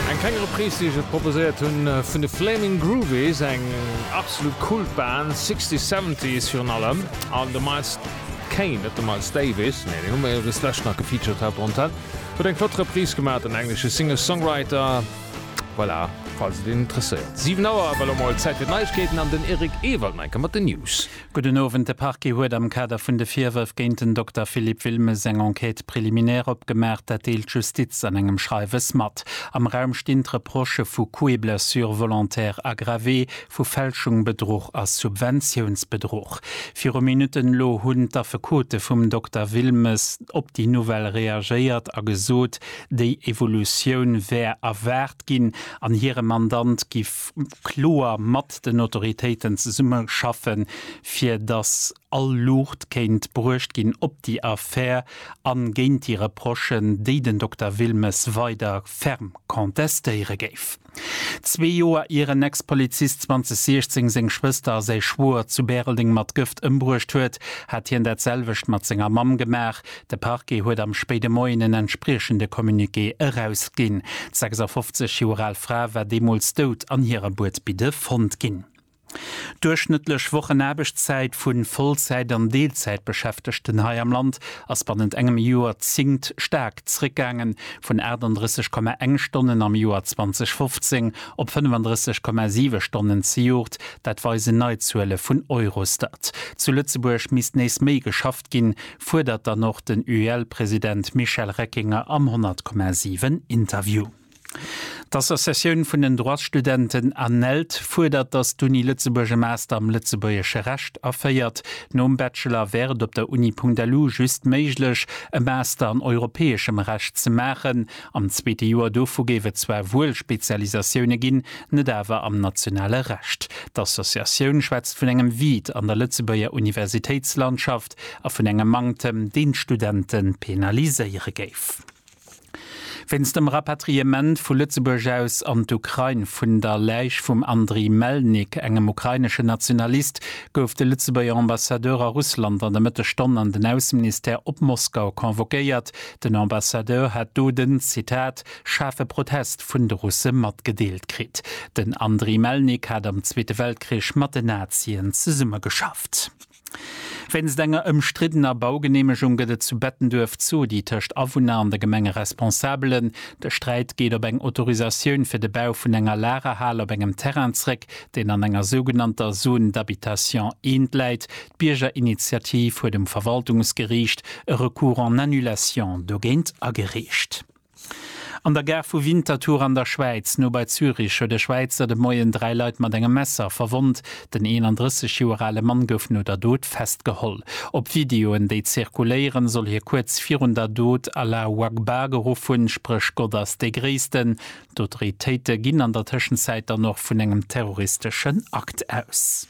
Eng kleng Reprise déi ech iech proposéiert hunn vun de Flaming Groovies, eng absolut Kultband, Sixties, Seventies virun allem, an de Miles Kane, net de Miles Davis, nee deen hu mer jo dës Lescht nach gefeatured haut de Montag, huet eng flott Reprise gemaach, den englesche Singer-Songwriter, voilà, falls et een interesséiert. 7 Auer, ewell emol Zäit fir d'Neiegkeeten an den Eric Ewald enke mat den News. Gudden Owend, De Parquet huet am Kader vun de Virwërf géint den Dokter Philippe Wilmes eng Enquête préliminaire opgemaach. Dat deelt d'Justiz an engem Schreiwes mat. Am Raum stinn d'Reprochë vu Coups et blessures volontaires aggravés, vu Fälschung, Bedruch a Subventiounsbedruch. Viru Minutten elo hunn d'Affekote vum Dokter Wilmes op déi Nouvelle reagéiert a gesot, déi Evolutioun wär erwaart ginn an hire Mandant giff kloer mat den Autoritéiten zesumme schaffen, fir datt all Luucht kéint bruecht ginn op déi Affär a géint déi Reprochen, déi den Dokter Wilmes weider ferm contestéiere géif. Zwee Joer ier en Ex-Polizist 2016 seng Schwëster a säi Schwoer zu Bäreldeng mat Gëft ëmbruecht huet, hat hien dat selwecht mat senger Mamm gemaach. De Parquet huet am spéide Moien en entspriechende Communiqué erausginn. D'sechsafofzeg Joer al Fra war deemools dout an hirer Buedbidde fonnt ginn. D'duerchschnëttlech Wochenaarbechtszäit vu Vollzäit an Deelzäitbeschäftegten hei am Land ass bannent engem Joerzéngt staark zréckgaangen, vun 38,1 Stonnen am Joer 2015 op 35,7 Stonnen zejoert. Dat weisen nei Zuele vun Eurostat. Zu Lëtzebuerg misst nees méi geschafft. gestoppt ginn, fuerdert dann och den UEL-President Michel Reckinger am 100, 7 Interview. D'Associatioun vun den Droitsstudenten ANELD fuerdert, datt d'Uni Lëtzebuerg e Master am lëtzebuergesche Recht aféiert. Nom Bachelor wär et op der Uni-punkt-elu just méiglech, e Master an europäeschem Recht ze maachen. Am zweete Joer dovu géif et zwar wuel Spezialisatioune ginn, net awer am nationale Recht. D'Associatioun schwätzt vun engem Vide an der Lëtzebuerger Universitéitslandschaft a vun engem Manktem, deen d'Studente penaliséiere géif. Wéinst dem Rapatriement vu Lëtzebuerg aus an d'Ukrain vun der Läich vum Andriy Melnik, engem ukrainesche Nationalist, gouf de Lëtzebuerger Ambassadeur a Russland an der Mëttesstonn an den Ausseministère op Moskau convoquéiert, Den Ambassadeur hätt do den, Zitat, schaarfe Protest vun de Russe matgedeelt kritt. Den Andriy Melnik hat am Zweete Weltkrich mat den Nazien zesummegeschafft. Wéinst enger ëmstriddener Baugeneemegung gëtt et zu Bettenduerf Zodi tëscht Awunner an de Gemengeresponsabelen. De Sträit geet op eng Autorisatioun fir de Bau vun enger Lagerhal op engem Terrain zréck, deen an enger sougenannter Zone d'habitation I läit, D'Biergerinitiativ huet um Verwaltungsgeriicht e Recours en annulation dogéint agereecht. An der Gare vu Winterthur an der Schwäiz, no bei Zürich, huet e Schwäizer de Moien dräi Leit mat engem Messer verwonnt. Den 31 Joer ale Mann gouf no der Dot festgeholl. Op Videoen, déi zirkuléieren, soll hie kuerz virun der Dot Allahu Akbar geruff hunn, spréch Gott ass dee Gréissten. D'Autoritéite ginn an der Tëschenzäit dann och vun engem terroristeschen Akt aus.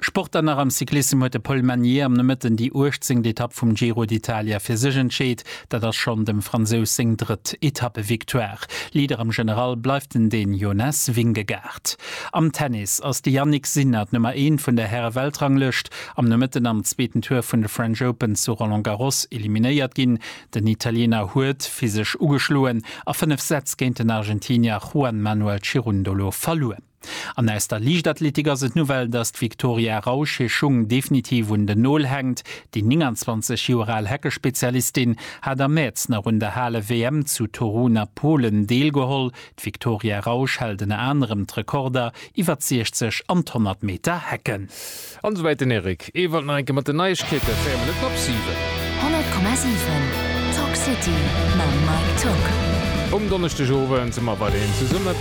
Sport dann nach am Cyclissem huet de Paul Magnier am Nomëtten déi uechtzéngt Etapp vum Giro d'Italia fir sech entscheet. Dat ass schonn dem Fransous seng drëtt Etappevictoire. Leader am General bleift en Dän Jonas Vingegaard. Am Tennis ass de Jannik Sinner d'Nummer eent vun der Häre-Weltranglëscht am Nomëtten am zweeten Tour vun de French Open zu Roland Garros eliminéiert ginn. Den Italiener huet physesch ugeschloen a fënnef Sätz géint den Argentinier Juan Manuel Cerundolo verluer. An aus der Liichtathletik ass et d'Nouvelle, datt d'Victoria Rausch hir Schung definitiv un den Nol hänkt. Déi 29 Joer al Heckespezialistin hat am Mäerz nach un der Hale-WM zu Torun a Polen deelgeholl. D'Victoria Rausch hält ënner anerem d'Rekorder iwwer d'Sichzeg an d'Honnert Meter Hecken. An esouwäit den Eric Ewald nach eng Kéier mat den Neiegkeeten, 4 Minutten op 7. 100,7 Talk City mam Mike Tock. Um Donneschdegowend si mer weiderhin zesumme.